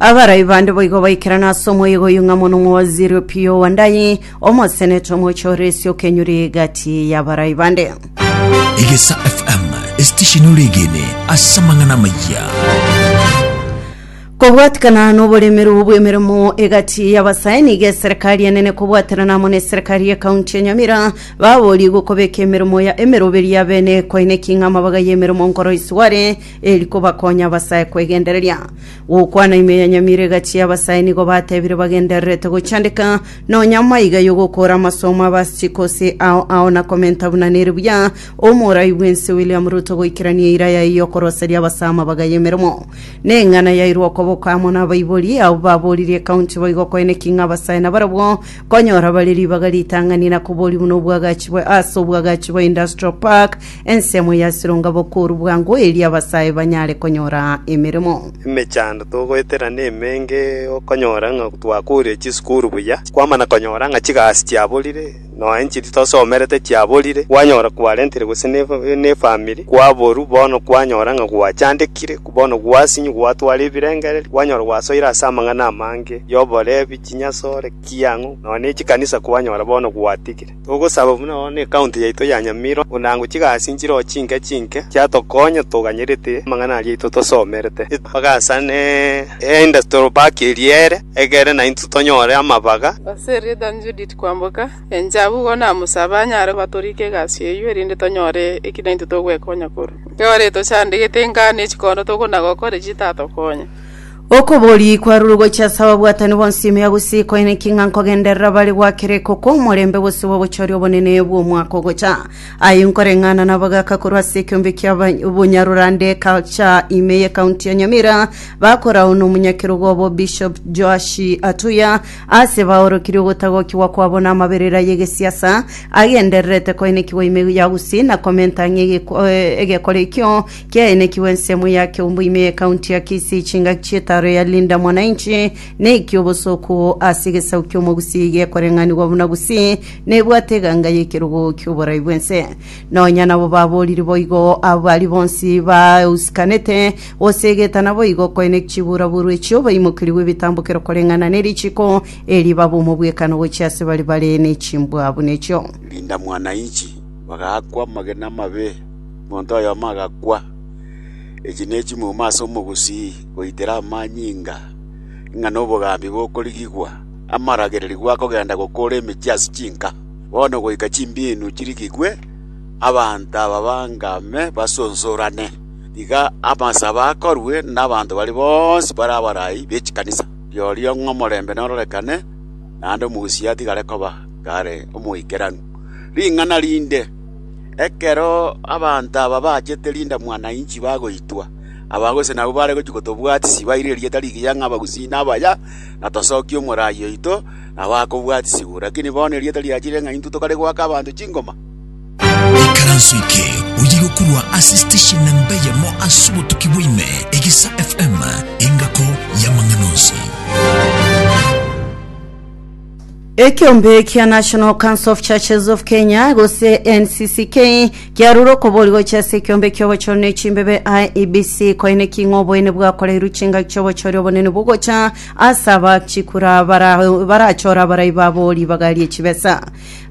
Abarai bande boigo baikerana ase omoyega oyio ng'a mono omowaziri o Pio Wandayi, omoseneta omoche ore ase okenyuri egati y'abarai bande. Egesa FM esitesheni oregene ase amang'ana amayia. Kobwatikana n'oboremeru bw'emeremo egati y'abasae nigo eserikari enene kobwaterana amo n'eserikari y'ekaunti ya Nyamira baborie gokobeka emeremo ya emeroberi ya bene koine king'ama bagaye emeremo nkoroisi ware eri kobakonya abasae kwegendereria. Gokwana ime ya nyamire egachia abasae nigo batebire bagendererete gochandeka, nonya maiga y'ogokoora amasomo aba Asychikose ao ao na komenta buna nere buya Omorai bw'ense William Ruto goikerania eira yaye y'okoroseria abasae amabaga y'emeremo. Neng'ana yairwe okoboko amo nabaibori abwo baboririe ekaunti boigo koeneki ng'a abasae nabarabwo konyora bare ribaga ritang'ani na kobori buna obwagachibwe ase obwagachi bwa Industrial Park Ensemo ya Sironga bokoru bwango erio abasae banyare konyora emeremo. Emechando togoetera nemenge okonyora ng'a twakoorire chisukuru buya, kwamana konyora ng'a chigasi chiaborire, nonya inche titosomerete chiaborire, kwanyora kwarentire gose nefamiri kwaborwa bono kwanyora ng'a gwachandekire, bono gwasinywa gwatwara ebirengererio, kwanyora gwasoire ase amang'ana amange yoborebi, chinyasore, kiang'u, nonya nechikanisa kwanyora bono gwatigire. Togosaba buna nonya necounty yaito ya Nyamira onango chigasi nchiroho chinke chinke chiatokonya toganyerete amang'ana aria aito tosomerete, epaga ase Industrial Park eria ere egere naintwe tonyore amabaga. Ase erieta riane Judith Kwamboka, enchera abwo igoro namosabe anyare gobatorika egasi eyio erinde tonyore eki naintwe togwekonya korwa. Ekero retochande gete ingano ye chikondo togonagokore chitatokonya. Okobori kwarure gochia ase ababwatani bonsi ime ya gusii koine ki ng'a nkogenderera bare gwakera iko kw'omorembe gose gw'obochori obonene bw'omwaka ogocha. Aye nkoreng'ana nabagaka korwa ase ekeombe kia bonyarurande Culture ime ye County ya Nyamira bakorao n'omonyakerogo obo Bishop Joashi Atuya ase baorokirie ogotagokigwa kwabo n'amaberera y'egesiasa agendererete koine ki goime ya gusii na komenta ng'a egekore ekio Kiaenekigwe ensemo ya Keumbu ime y'Ekaunti ya Kisii chingaki chi'etaaro ya Linda Mwananchi na eki'obosoku ase egesaku ki'Omogusii gekoreng'anigwa buna Gusii nebwate eganga y'ekerogo ki'oborai bw'ense. Nonya nabo babooriri boigo abo baria bonsi bausikanete goseegeta naboigo koenekia chibuuraburu echi obaimokerigwe ebitambokero koreng'ana nerichiiko erio baba omobwekano gochia ase baria bare nechimbwa buna echio. Linda Mwananchi bagaakwa amagena amabe. Monto oyomo agakwa. Echi ne chimuma ase omogusii goitera amanyinga, ng'a nobogambi bokorigigwa, amaragererigwa akogenda gokoora emechie ase chinka, bono goika chimbiinu chirigigwe, abanto ababanga ime basonsorane. Tiga amasabo akorwe nabanto baria bonsi bare abarai be chikanisa. Rirorio ng'a omorembe nororekane, naende omogusii atigare koba kare omoikeranu. Ring'ana rinde. Ekero abanto aba bachete rindamwa na inchi bagoitwa, abagose nabwo bare gochia kotobwatisia, baire erieta rigiya ng'a Abagusii nabaya, na tosokie omorai oito nabo akobwatisigwa. Lakini bono erieta riachire ng'a intwe tokare goaka abanto chingoma. Ekaranso eke oye gokurwa ase station namba eyemo ase obotuki bwa ime, Egisa FM, engako y'amang'ana onsi. Ekeombe kia National Council of Churches of Kenya gose NCCK kiarure okobori gochia ase ekeombe ki'obochori ne chimbebe IEBC koineki ng'a oboene bwakoreirwe chingaki chi'obochori obonene bogocha ase abachikura bara barachore abarai babo ribaga rie chibesa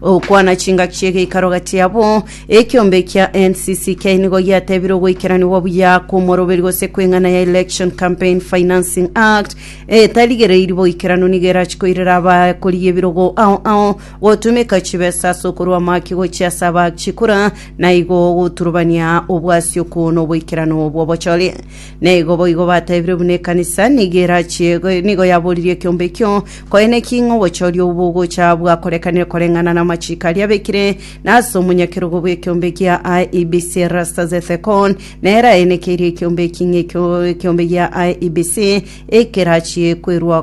okwana chingaki chi'egeikaro gati yabo ekeombe kia NCCK nigo giatebire ogoikeraniwa buya kw'omoroberi gose kw'eng'ana ya Election Campaign Financing Act etarigereiri boikeranu nigo erachi koirera abakori ebirogo ao ao gotumeka chibesa ase okorua amaki gochia ase abachikora na igo goturubania obwasi okwo noboikeranu bw'obochori na igo boigo batebire buna ekanisa nigo erachie nigo yaboririe ekiombe ekio koene ki ng'a obochori obwo bogocha bwakorekanire koreng'ana na amachiko aria abekire na ase omonyakerogo bw'ekiombe kia IEBC Erastus Ethekon Nere aenekeirie ekiombe eking'e ekio ekiombe gia IEBC ekerachie kwerua